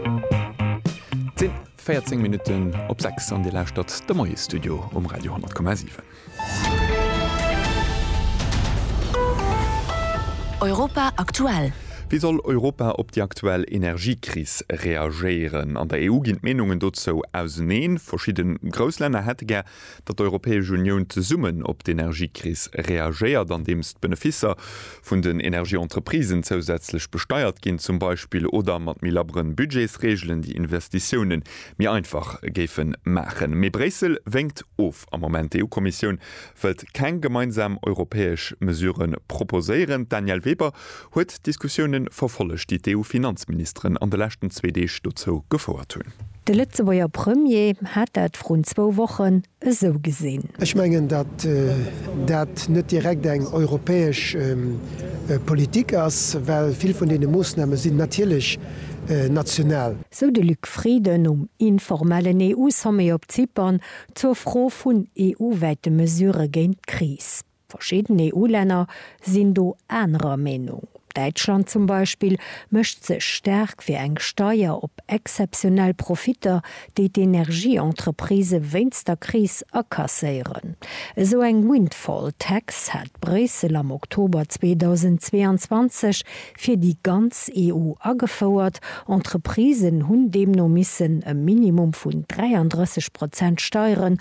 Et sinn 14 Minutten op 6 an Dir lauschtert de Moie-Studio um Radio 10,7. Europa aktuell. Wéi soll Europa op déi aktuell Energiekris reagéieren? An der EU ginn d'Meenungen dozou auseneen. Verschidde grouss Länner hätte gär, datt d'Europäesch Unioun zesummen op d'Energiekris reagéiert, andeems d'Beneficer vun den Energieentreprisen zousätzlech besteiert ginn zum Beispill, oder mat méi labberen Budgetsreegelen, déi Investitiounen méi einfach géife maachen. Mee Bréissel wénkt of am Moment. D'EU-Kommissioun wëllt keng gemeinsam europäesch Mesurë proposéieren. D'Danièle Weber huet d'Diskussioune verfollegt, déi d'EU-Finanzministeren an de leschten zwee Deeg dozou gefouert hunn. De Lëtzebuerger Premier hat dat vrun zwou Wochen esou gesinn. Ech mengen, datt dat net direkt eng europäesch Politik ass, well vill vun deene Moossname sinn natierlech national. Sou de Luc Frieden um informellen EU-Sommet op Zypern zur Fro vun EU-wäite Mesurë géint d'Kris. Verschidden EU-Länner sinn do anerer Meenung. Däitschland zum Beispill mécht sech staark fir eng Steier op exzeptionell Profitter, déi d'Energie-Entreprisë wéinst der Kris akasséieren. Esou eng Windfall Tax hat Bréissel am Oktober 2022 fir déi ganz EU agefouert. Entreprisen hunn deemno missen e Minimum vun 33 Prozent Steieren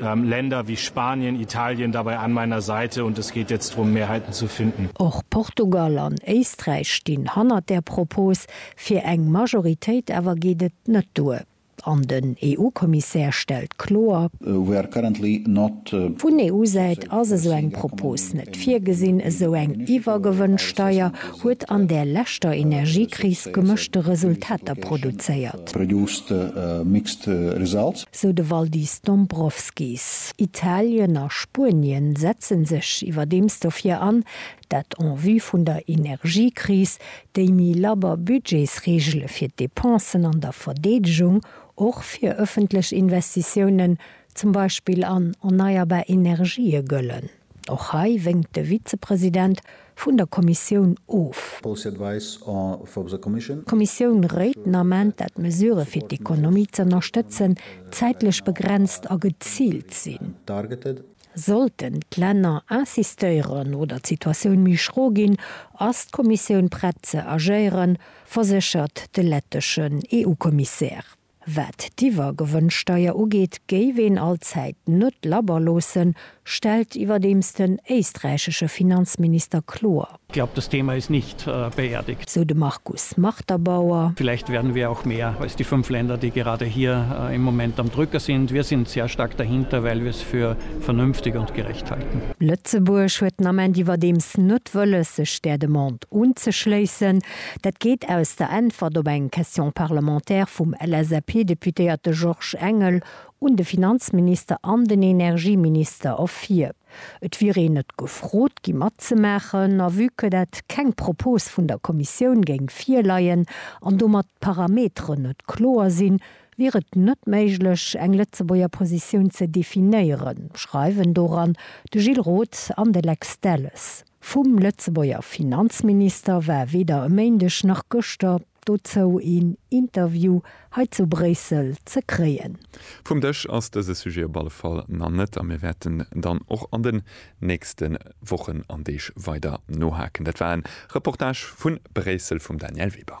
Länder wie Spanien, Italien dabei an meiner Seite und es geht jetzt drum Mehrheiten zu finden. Och Portugal an Éisträich stinn hannert där Propos fir eng Majoritéit, awer geet et net duer an den EU-Kommissär stellt kloer, We are currently not. Vun EU-Säit ass esou eng Propos net virgesinn. Esou eng Iwwergewënnsteier huet an där leschter Energiekris gemëschte Resultater produzéiert. sou de Valdis Dombrovskis. Italien a Spuenien setzen sech iwwerdeems dofir an, dat en vue vun der Energiekris, déi méi labber Budgetsreegele fir d'Depensen an der Verdeedegung, och fir ëffentlech Investitiounen, zum Beispill an erneierbar Energië, gëllen. Och hei wénkt de Vizepresident vun der Kommissioun of. D'Kommissioun réit den Ament, dat d'Mesurë fir d'Ekonomie z'ënnerstëtzen, zäitlech begrenzt a geziilt sinn. Sollten d'Länner insistéieren oder d'Situatioun méi schro ginn, ass d'Kommissioun prett ze agéieren, verséchert de letteschen EU-Kommissär. Wat d'Iwwergewënnsteier ugeet, géif een allzäit net labber loossen, stellt iwwerdeems den éisträichesche Finanzminister kloer. Ich glaube, das Thema ist nicht beerdigt. Sou de Markus Marterbauer. Vielleicht werden wir auch mehr als die fünf Länder, die gerade hier im Moment am Drücker sind. Wir sind sehr stark dahinter, weil wir es für vernünftig und gerecht halten. Lëtzebuerg huet den Ament iwwerdeems net wëlles, sech där Demande unzeschléissen. Dat geet aus der Äntwert op eng Question parlementaire vum LSAP-Deputéierte Georges Engel un de Finanzminister an den Energieminister ervir. Et wier een net gefrot gi matzemaachen a vue que dat keng Propos vun der Kommissioun géing virleien an domat d'Parameteren net kloer sinn, wier et net méiglech eng Lëtzebuerger Positioun ze definéieren, schreiwen doran de Gilles Roth an de Lex Delles. Vum Lëtzebuerger Finanzminister war weder e Méindeg nach gëschter dozou een Interview hei zu Bréissel ze kréien. Vum Dësch ass dëse Sujet op alle Fall nach net a mir wäerten dann och an den nächste Wochen an Deeg weider nohaken. Dat war e Reportage vu Bréissel vum Danièle Weber.